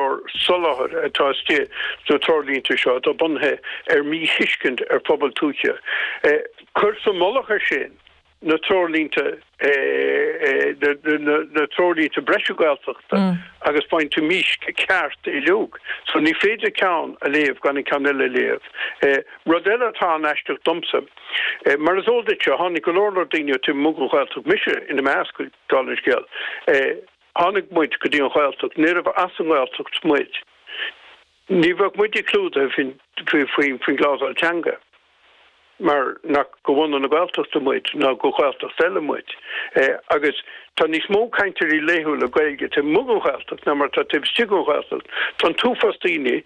an soláthar atá istigh sna Treoirlínte seo atá bunaithe ar mhíthuiscint ar phobail tuaithe. Cuir sa mhullach ar sin na Treoirlínte na Treoirlínte breise Gaeltachta agus bainfidh tú mísc ceart uiliog. So ní féidir ceann a léamh gan an ceann eile a léamh. Rud eile atá an-aisteach domsa, mar is eol duitse, tháinig go leor leor daoine ó taobh amuigh den Ghaeltacht, mise ina measc, dála an scéil. Tháinig muid go dtí an Ghaeltacht. Níorbh as an nGaeltacht muid. Ní bheadh muid clúdaithe faoin gclásal teanga mar nach de bhunadh na Gaeltachta muid ná de Ghaeltacht eile muide. Agus tá níos mó cainteoirí laethúla Gaeilge taobh amuigh den Ghaeltacht ná mar atá taobh istigh den Ghaeltacht. Tá an t-uafás daoine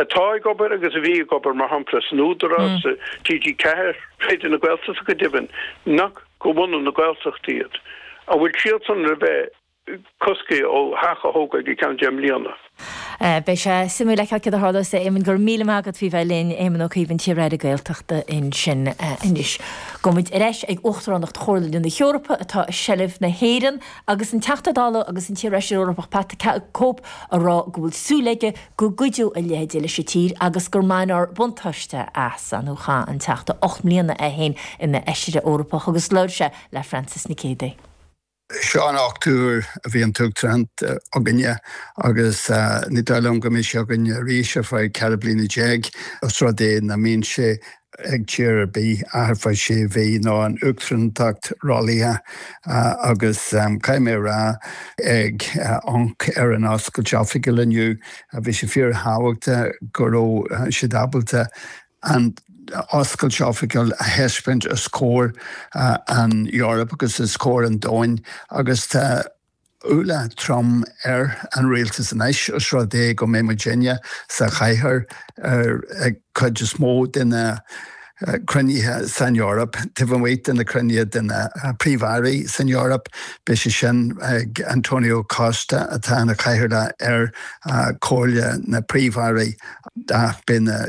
atá ag obair agus a bhí ag obair, mar shampla, san Údarás, TG4, Raidió na Gaeltachta go deimhin, nach. de bhunadh na Gaeltachta iad, an bhfuil siadsan le bheith cosctha ó theach a thógail go ceann deich mbliana? Beidh sé suimiúil fheiceáil céard a tharlós. A Éamoinn, go raibh míle maith agat faoi bheith linn. Éamonn Ó Cuív, an t-iar-Aire Gaeltachta ansin anois. Gabhaimid ar ais ag Uachtaránacht Chomhairle na hEorpa atá i seilbh na hÉireann agus an Teachta Dála agus an t-iar-Fheisire Eorpach Pat the Cope ag rá go bhfuil súil aige go gcuideodh a leithéid leis an tír agus go mbainfear buntáiste as. Chaith an Teachta ocht mbliana é féin ina Fheisire Eorpach agus labhair sé le Frances Nic Géidigh. Seo an ochtú uair a bhí an uachtaránacht againne agus ní dóigh liom go mbeidh sé againne arís ar feadh ceithre bliana déag os rud é nach mbíonn sé ag tír ar bith ach ar feadh sé mhí nó an uachtaránacht rollaithe agus caithfidh mé a rá ag amharc ar an oscailt oifigiúil inniu bhí sé fíorthábhachtach go raibh siad ábalta an oscailt oifigiúil a thaispeáint os comhair an Eoraip agus os comhair an domhain agus tá. ualach trom ar an rialtas anois os rud é go mbeidh muidinne sa chathair ar an chuid is mó de na cruinnithe san Eoraip, taobh amuigh de na cruinnithe de na Príomh-Airí san Eoraip, beidh sé sin ag Antonio Costa atá ina chathaoirleach ar Chomhairle na Príomh-Airí ach beidh na.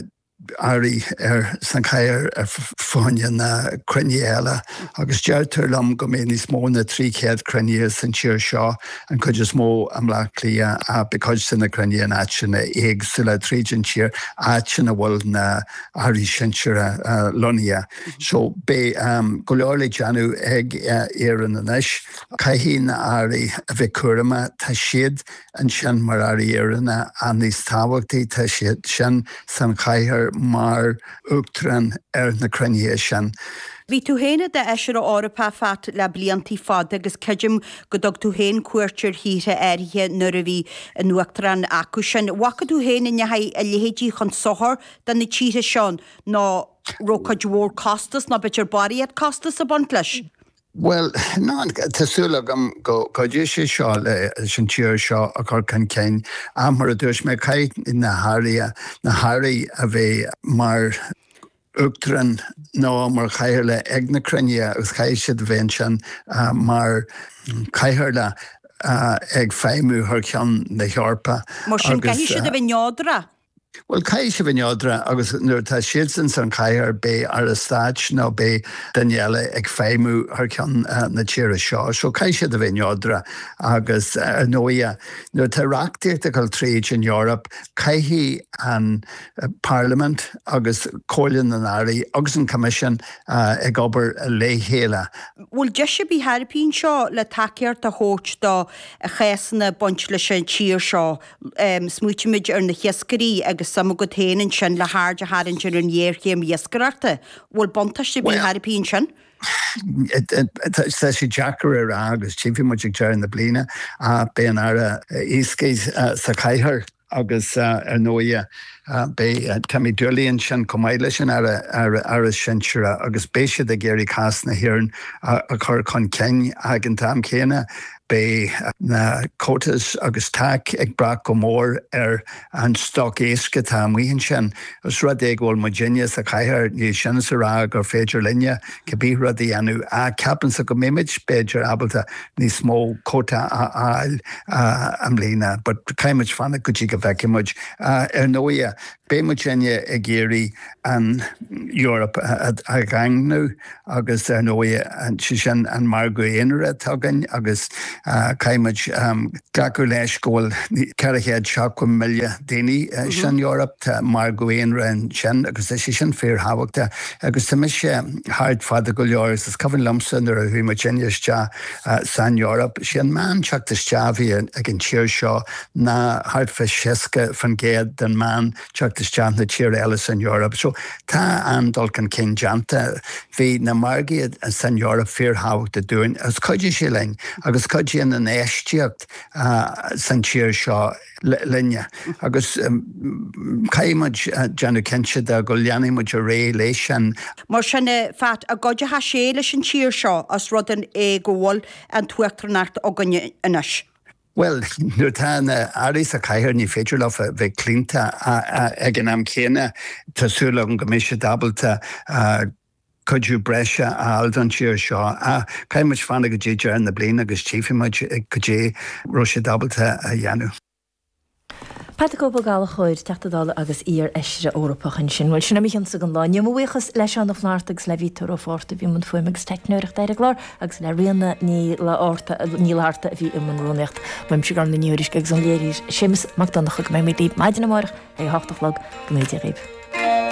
airí sa chathaoir ar achan cheann de na cruinnithe eile agus deirtear liom go mbeidh níos mó ná trí chéad cruinnithe san tír seo, an chuid is mó i mBleá Cliath ach beidh cuid de na cruinnithe in áiteanna éagsúla tríd an tír, áiteanna a bhfuil na hairí sinseartha lonnaithe. So beidh go leor le déanamh ag Éirinn anois. Caithfidh na hairí a bheith cúramach, tá siad ansin mar Airí Éireannacha níos tábhachtaí tá siad sin sa chathaoir mar Uachtarán ar na cruinnithe sin. Bhí tú féin i d'Fheisire Eorpach, Phat, le blianta fada agus creidim go dtug tú féin cuairt ar thíortha áirithe nuair a bhí an Uachtaránacht acu sin. Bhfaca tú féin an ndeachaigh a leithéidí chun sochair do na tíortha seo? Nó an raibh cuid mhór costas, nó b'fhéidir barraíocht costas ag baint leis? Bhuel, tá súil agam go gcuideoidh sé seo leis an tír seo a chur chun cinn. Ach mar a dúirt mé, caithfidh na hairí, na hairí a bheidh mar Uachtarán nó mar Chathaoirligh ag na cruinnithe agus caithfidh siad a bheith ansin mar Chathaoirligh ag feidhmiú thar ceann na hEorpa Mar sin, caithfidh siad a bheith neodrach. Bhuel, caithfidh siad a bheith neodrach agus nuair atá siadsan sa chathaoir beidh Aire Stáit nó beidh duine eile ag feidhmiú thar ceann na tíre seo so caithfidh siad a bheith neodrach agus ar ndóighe nuair atá reachtaíocht ag dhul tríd an Eoraip caithfidh an Parliament agus Comhairle na nAirí agus an Coimisiún ag obair le chéile. Bhfuil deis ar bith thar a bheith anseo le tacaíocht a thabhairt do chásanna ag baint leis an tír seo? Smaoitímid ar na hiascairí agus suim agat féin ansin le haird a tharraingt ar an ngéarchéim iascaireachta. Bhfuil buntáiste ar bith thar a bheith ansin? Bhuel, tá sé deacair a rá agus tífidh muid ag deireadh na bliana ach beidh an tAire Iascaigh sa chathaoir agus ar ndóighe beidh Timmy Dooley ansin chomh maith leis an Aire Sinsearach agus beidh siad ag iarraidh cás na hÉireann a chur chun cinn ag an t-am chéanna. Beidh na quotas agus TAC ag brath go mór ar an stoc éisc atá amuigh ansin. Os rud é go bhfuil muidinne sa chathaoir, níl sin le rá gur féidir linne cé bith rud a dhéanamh, ach ceapaimse go mbeimid b'fhéidir ábalta níos mó cuóta a fháil i mbliana, but caithfimid fanacht go dtí go bhfeicfidh muid, ar ndóighe. Beidh muidinne ag iarraidh an Eoraip a dhaingniú agus ar ndóighe, sé sin an margadh aonair atá againn agus caithfidh muid glacadh leis go bhfuil ceithre chéad seachtó milliún daoine san Eoraip, tá margadh aonair ansin agus tá sé sin fíorthábhachtach. Agus tá mise thart fada go leor agus is cuimhin liomsa nuair a chuaigh muidinne isteach san Eoraip, sé an meán teacht isteach a bhí ag an tír seo ná thart fá 60% den meán teacht isteach de na tíortha eile san Eoraip. So tá an-dul chun cinn déanta. Bhí na margaí san Eoraip fíorthábhachtach dúinn agus chuidigh sé linn agus chuidigh an infheistíocht san tír seo, linne agus caithfidh muid déanamh cinnte de go leanfaidh muid ar aghaidh leis sin. Mar sin, a Phat, an gcuideochaidh sé leis an tír seo os rud é go bhfuil an uachtaránacht againn anois. Bhuel, nuair atá na hairí sa chathaoir ní féidir leo bheith claonta ag an am chéanna. Tá súil agam go mbeidh siad ábalta cuidiú breise a fháil don tír seo. Caithfidh muid fanacht go dtí deireadh na bliana agus tchífidh muid cad é a raibh siad ábalta a dhéanamh. Pat the Cope Ó Gallchóir, Teachta Dála agus iar-Fheisire Eorpach ansin. Bhuel, sin é mo chionn-sa don lá. inniu. Mo bhuíochas le Seán Ó Flaithearta agus le Peter Ó Fátharta a bhí i mbun fuaime agus teicneoireachta ar an gclár agus le Ríona Ní Fhlatharta a bhí i mbun rúnaíochta. Uaimse, Gormfhlaith Ní Thuairisg, agus ón léiritheoir. Séamus Mac Donncha go mbeidh muid libh maidin amárach ag a hocht a chlog. Go ngnóthaí Dia dhaoibh.